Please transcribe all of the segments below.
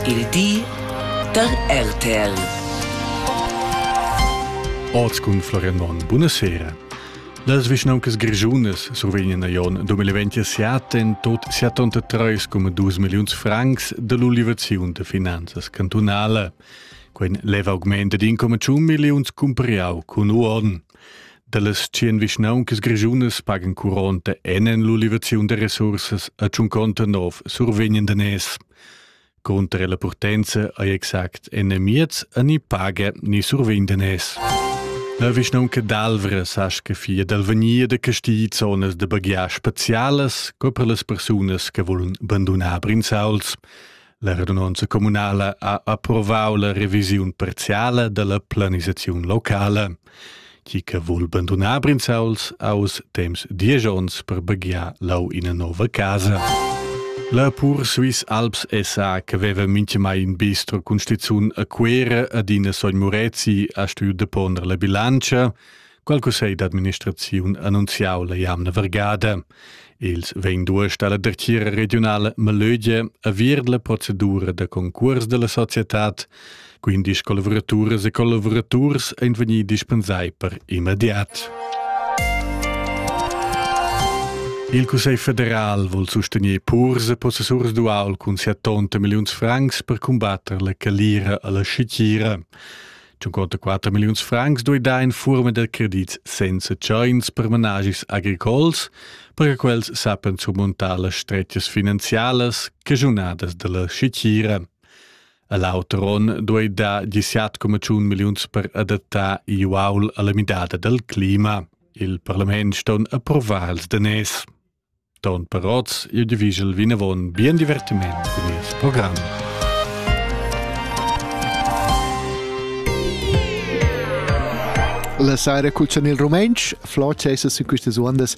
Il di da RTL. Oz cun Florian Monn. Buonasera. Las vischnauncas grischunas survegnan a Jon 2027 en tot 73,2 milliuns francs dall'ulivaziun da finanzas cantunala. Quei lev augment ad 1,1 milliuns cumpriau cun uorden. Dallas 100 vischnauncas grischunas pagan curonta en l'ulivaziun da resursas a 59 survegnan daners. Cunter la purtenza ei exact enemiez e ni paga ni survindenes. La vischnaunca d'Alvra sa che fia dal vegnir da casti zonas de baghiar specialas co per las persunas che volun bandonar Brinzauls. La radunanza comunala ha approvau la revisiun parziala della planisazione locale. chi che vul bandunar Brinzauls aus temps diesch ons per baghiar lau ina nova casa. La pur Swiss Alps SA che veva minchemai in bistro cun stizun a Cuera ad ina sogn Murezi ha stuiu deponder la bilancia, qual cussegl d'administraziun annunziau la jamna vergada. Els vegn duest alla dretgira regionala Melögia a vir la procedura da concurs della societad, quindi collaboraturas e collaboraturs ein vegni dispensai per immediat. Il Cussegl federal vuol sostenere purs e possessurs dual cun 70 milions francs per combattere la calira alla scicira. 54 milliuns francs duida in furma da credit senza tschains per managis agricols, perche quels sappen surmuntar las strettas finanzialas cagiunadas dalla schitgira. A l'auter onn duida 17,1 milliuns per adattar Iuaul alla midada dal clima. Il parlament ston approvar els danès. Ton per oz il divischel vinavon bien divertiment cun nies program. La saira cuccian il rumentsch, flot sesa sin questas undas.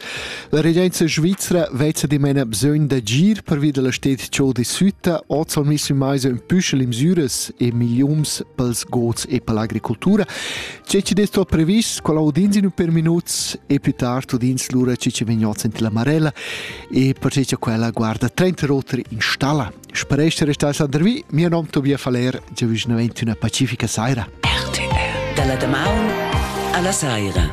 La regenza svizra vezza dimena bisogn d'agir pervi della stet ciò di sütta, oz sono messi in meisa in püschel imsüras e miliums pels gods e per l'agricoltura. Tge chi'd es tuot previs, quel audins in ün pêr minuts e più tard udins lura chi ci vegnots in la Marella e perche cha quella guarda trenta oter in stalla. Spero essere restà Sander Vi, mio nom Tobias Faller, già vicinavant una pacifica saira. RTL. Dalla damaun alla saira.